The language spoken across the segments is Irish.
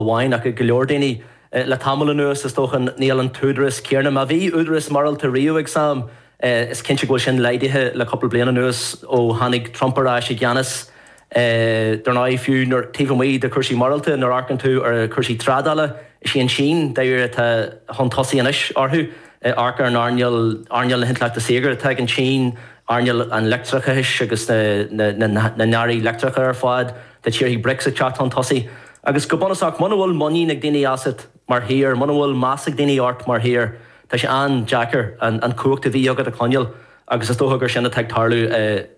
amháin, ach ag go leor daoine, le tamall anuas, is dócha. Níl an t-údarás céanna. Má bhí údarás morálta riamh againn, is cinnte go bhfuil sin laghdaithe le cúpla bliain anuas, ó tháinig Trump ar ais i gceannas. Dár ndóigh, fiú nuair, taobh amuigh de cúrsaí morálta, nuair amharcann tú ar chúrsaí trádála, is í an tSín, dáiríre, atá chun tosaigh anois orthu. Amharc ar an earnáil, earnáil na hintleachta saorga atá ag an tSín, earnáil an leictreachais agus na n-earraí leictreacha ar fad. Tá tíortha Brics ag teacht chun tosaigh. Agus go bunúsach, muna bhfuil muinín ag daoine asat mar thír, muna bhfuil meas ag daoine ort mar thír, tá sé an-deacair an chumhacht a bhí agat a choinneáil agus is dócha gur sin atá ag tarlú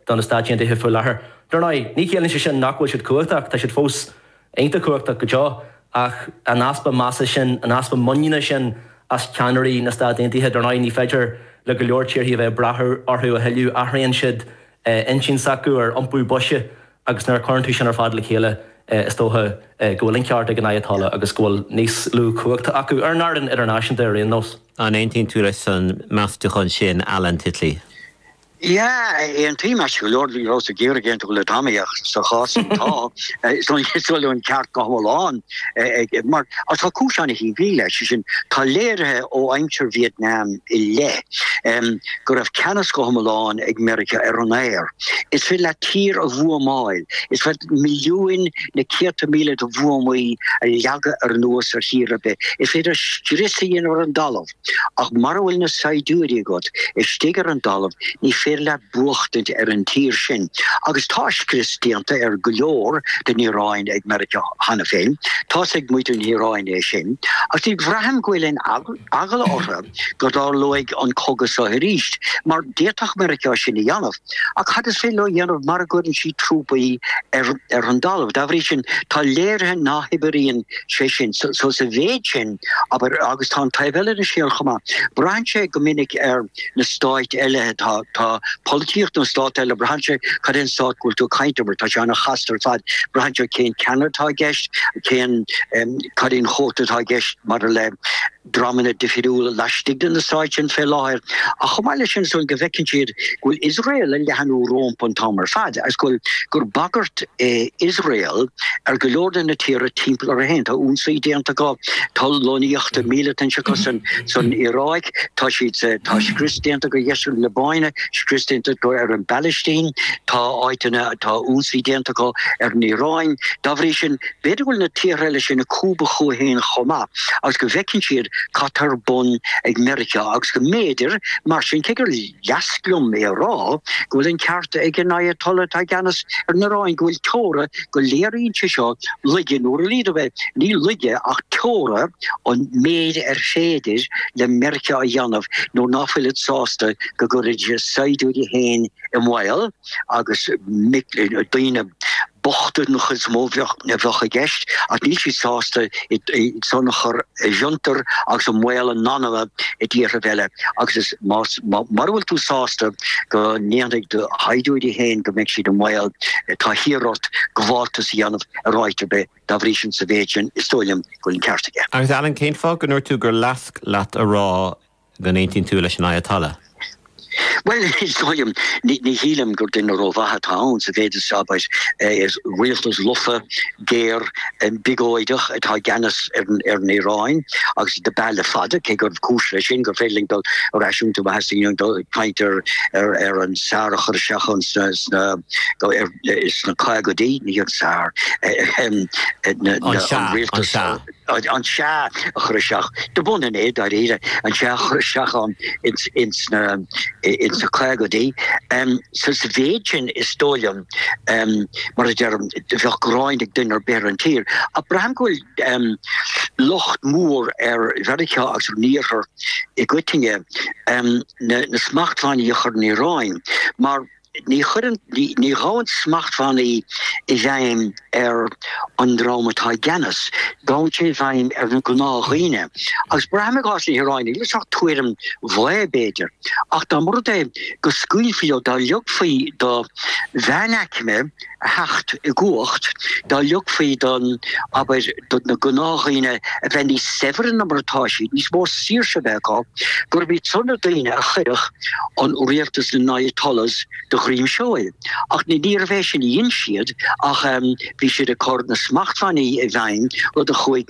do na Stáit Aontaithe faoi láthair. Dar ndóigh, ní chiallaíonn sé sin nach bhfuil siad cumhachtach, tá siad fós iontach cumhachtach go deo ach an easpa measa sin, an easpa muiníne sin as ceannairí na Stát Aontaithe, dar ndóigh, ní féidir le go leor tíortha a bheith ag brath orthu a thuilleadh, athraíonn siad intinn s'acu ar iompú boise Agus nuair a chuireann tú sin ar fad le chéile is dócha go bhfuil an ceart ag an Ayatollah agus go bhfuil níos lú cumhachta acu ar an fhearann idirnáisiúnta ar aon nós. An aontaíonn tú leis an meastúchán sin Alan Titley? Yeah, aontaím, ait go leor bhí Ros ag iarraidh aontú le Tommy ach sa chás atá is dóigh liom go bhfuil an ceart go hiomlán aige mar tá cúis ana shimplí leis, sé sin tá léirithe ó aimsir Vietnam i leith go raibh ceannas go hiomlán ag Meiriceá ar an aer. Is féidir leat tír a bhuamáil, is féidir milliúin nó céadta míle de bhuamaí a leagadh anuas ar thír ar bith, is féidir scrios a dhéanamh ar an dtalamh, ach mara bhfuil na saighdiúirí agat istigh ar an dtalamh ní féidir leat buachtaint ar an tír sin. Agus tá scrios déanta ar go leor den Iaráin ag Meiriceá cheana féin, tá's ag muintir na hIaráine é sin, agus ní bhraithim go bhfuil aon eagla. eagla ortha go dtarlóidh an cogadh so arís, mar d'fhéadfadh Meiriceá sin a dhéanamh. Ach cad is féidir leo dhéanamh mara gcuireann siad trúpaí ar an dtalamh? Dá bhrí sin, tá léirithe ná hoibríonn sé sin so sa mhéid sin, abair, agus tá an taobh eile den scéal chomh maith. Braitheann sé go minic ar. na stáit eile tá tá polaitíocht na stát eile braitheann sé cad é an stát go bhfuil tú ag caint abair tá sé ana chasta ar fad braitheann sé cén ceann atá i gceist cén em cad é an cuóta atá i gceist maidir le dreamanna difiriúla laistigh de na stáit sin fé láthair ach chomh maith leis sin is dóigh go bhfeiceann siad go bhfuil Iosrael ag leathnú rómpu an t-am ar fad agus go bhfuil gur bagairt é Iosrael ar go leor de na tíortha timpeall air féin tá ionsaí déanta acu tá lonnaíochta míleata insa acusan san Iaráic tá siad tá scrios déanta acu i ndeisceart na Liobáine, scrios déanta acu ar an bPalaistín, tá áiteanna tá ionsaí déanta acu ar an Iaráin. Dá bhrí sin, b'fhéidir go bhfuil na tíortha eile sin ag cúbadh chucu féin chomh maith agus go bhfeiceann siad cad tá ar bun ag Meiriceá agus go mb'fhéidir mar sin cé gur Leasc liom é a rá go bhfuil an ceart ag an Ayatollah atá i gceannas ar an Iráin go bhfuil teora go léiríonn sé seo laige nó ar a laghad b'fhéidir ní laige ach teora an méid ar féidir le Meirceá a dhéanamh nuair ná fuilid sásta go gcuirfidís a saighdiúirí féin i mbaol agus daoine. bochta den chuid is mó a bheadh i gceist ach níl siad sásta iad san a chur i bhfiontar agus i mbaol a n-anama i dtíorthaibh eile agus mura bhfuil tú sásta go ndéanfadh do shaighdiúirí féin go mbeadh siad i mbaol tá thiar ort gabháltas a dhéanamh ar áit ar bith. Dá bhrí sin sa mhéid sin is dóigh liom go bhfuil an ceart aige. Agus Alan cén fáth go ndúirt tú gur leasc leat a rá. Go n-aontaíonn tú leis an Ayatollah? Bhuel, is dóigh liom, ní shílim gur duine ró-mhaith atá ann sa mhéid is abair, is rialtas lofa, géar, biogóideach atá i gceannas ar an Iaráin agus dob ea le fada, cé go raibh cúis leis sin gur féidir linn dul ar ais iontu má thosnaíonn muid ag caint ar an sár a chur isteach ann sna sna caogaidí, ní an sár, ahem, an rialtas. an Seá a chur isteach dob ionann é, dáiríre, an Seá a chur isteach ann ins na ins na caogaidí. Sa sa mhéid sin is dóigh liom, mar a deirim, bheadh gráin ag duine ar bith ar an tír. Ach braithim go bhfuil locht mór ar Mheiriceá agus ar an Iarthar i gcoitinne na smachtbhannaí a chur ar an Iaráin mar, Ní chuireann, ní ghabhann smachtbhannaí i bhfeidhm ar an dream atá i gceannas, gabhann sé i bhfeidhm ar na gnáthdhaoine. Agus braithim i gcás na hIaráine, níl sé ach tuairim bhaoth b'fhéidir, ach dá mba rud é go scaoilfí leo, dá leogfaí do mheánaicme, a theacht i gcumhacht, dá ligfaí don, abair, do na gnáthdhaoine a bheith níos saibhre ná mar atá siad, níos mó saoirse a bheith acu, gurb iad san na daoine a chuirfeadh an Rialtas na nAyatollahs de dhroim seoil. Ach ní, níorbh é sin a dhein siad ach bhí siad ag cur na smachtbhannaí i bhfeidhm, rud a chuaigh.